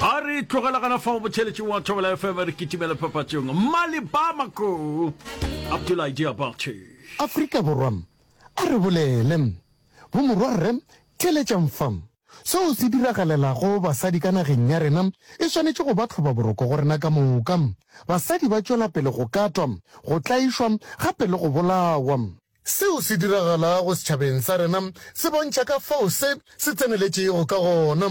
a re tlogela gana fa botšheletšeng wa thobela fm re kitimela papatšong mali bamako abdulahi diabache Afrika Borwa a re bolele. Bomorwa Rre theeletšang fa. Seo se diragalelago basadi ka nageng ya rena e swanetše go ba tlhobaboroko go rena ka moka. Basadi ba tšwela pele go katwa, go tlaišwa gape le go bolawa. Seo se diragalago setšhabeng sa rena se bontšha ka fao se se tseneletšego ka gona.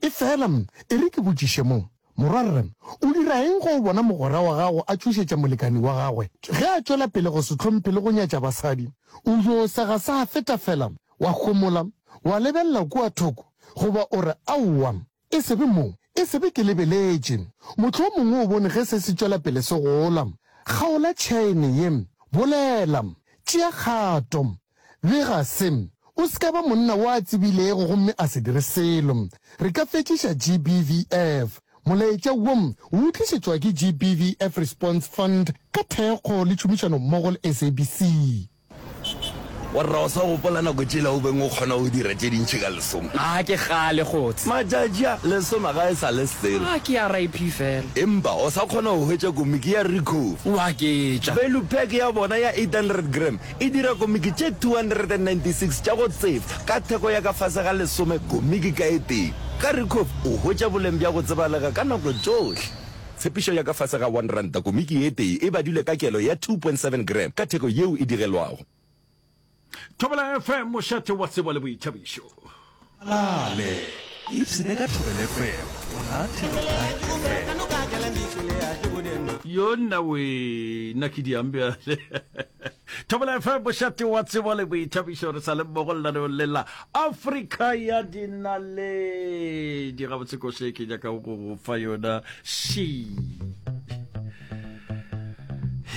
Efela e re ke botšiše mo, Morwa, re o dira eng ge o bona mogwera wa gago a tšhošetša molekani wa gagwe ge a tšwela pele go se hlomphe le go nyatša basadi? O yo sega sa feta fela, wa homola, wa lebelela kua thoko, goba o re, Aowa, E se be mo, e se be ke lebeletše. Mohlomongwe o bone ge se se tšwela pele se gola. Kgaola tšhaene ye. Bolela. Tšea kgato. Bega se. O se ka ba monna wo a tsebilego gomme a se dire selo. Re ka fetšiša GBVF. Molaetša wo o utlišetšwa ke GBVF Response Fund ka thekgo le tšhomišanommogo le SABC. Warra o sa gopola nako tšela o beng o kgona go dira tše dintši ka lesoma? Ga ke kgale kgots. Matšatši a, lesoma ga e sa le selo. Ga ke ya RIP fela. Empa o sa kgona go hwetša komiki ya Ricoh? Wa ke tša. Value pack ya bona ya 800 gram e dira komiki tše 296 tša go tseba ka theko ya ka fase ga lesome komiki ka e tee. Ka Ricoh o hwetša boleng bja go tsebalega ka nako tšohle. Tshepišo ya ka fase ga R1 komiki ye tee e badilwe ka kelo ya 2.7 gram ka theko yeo e digelwago. Thobela FM, mošate wa tsebo le boithabišo. Malale, ipsene ka Thobela FM, monate le Black FM. Yona wee na ke diang bjale. thobela fm bošate wa tsebo le boithabišo re sa le mmogo lenaneong le la afrika ya dinaledi gabotse koše ke nyakago go go fa yona she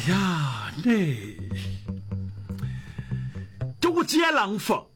yane ke go tseelang fa